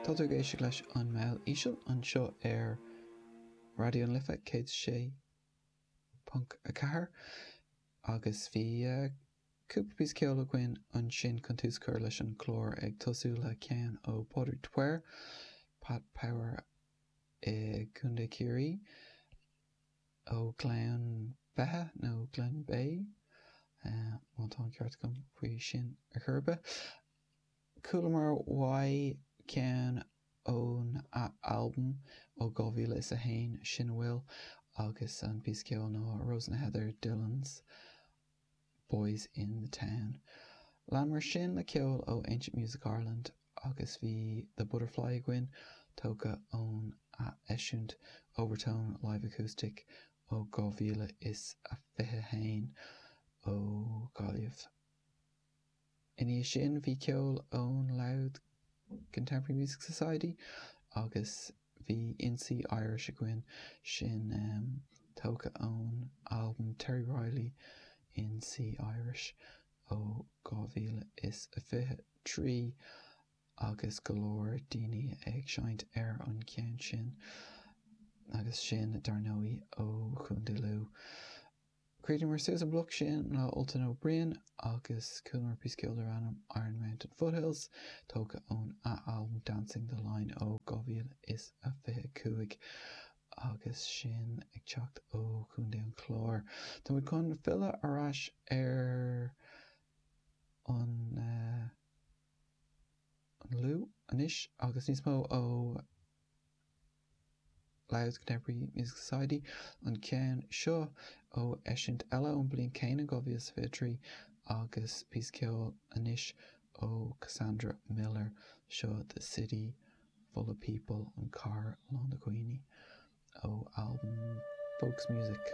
Tá tú ag éisteacht leis An Meall Íseal anseo ar Raidió na Life 106.4 agus bhí cúpla píosa ceoil againn ansin chun tús a chur leis an chlár ag tosú le ceann ó Pádraig de Paor, Pat Power i gContae Chiarraí, ó Ghleann Beithe nó Glenbeigh, má tá an ceart agam faoi sin ar chor ar bith. Chualamar uaidh ceann ón albam ó 2001, Sin a Bhfuil, agus an píosa ceoil ná Rose in the Heather, Dillon's, Boys in the Town. Leanamar sin le ceol ó Ancient Music Ireland agus bhí The Butterfly againn, tógtha ón eisiúint Overtone Live Acoustic ó 2021 ó Ghaillimh. Ina dhiaidh sin bhí ceol ón Louth Contemporary Music Society agus bhí In C Irish againn, sin tógtha ón albam Terry Riley, In C Irish ó 2023, agus go leor daoine ag seinnt ar an gceann sin, agus sin dar ndóigh ó Chontae Lú. Chríochnaíomar suas an bloc sin le Ultan O'Brien agus chualamar píosa ceoil darbh ainm 'Iron Mountain Foothills', tógtha ón albam 'Dancing the Line' ó 2025, agus sin ag teacht ó Chontae an Chláir. Tá muid chun filleadh ar ais ar an Lú anois agus níos mó ó. Louth Contemporary Music Society, an ceann seo ó eisiúint eile ón bliain céanna, 2023, agus píosa ceoil anois ó Cassandra Miller, seo The City Full of People, An Chathair Lán de Dhaoine, ó albam Folks' Music.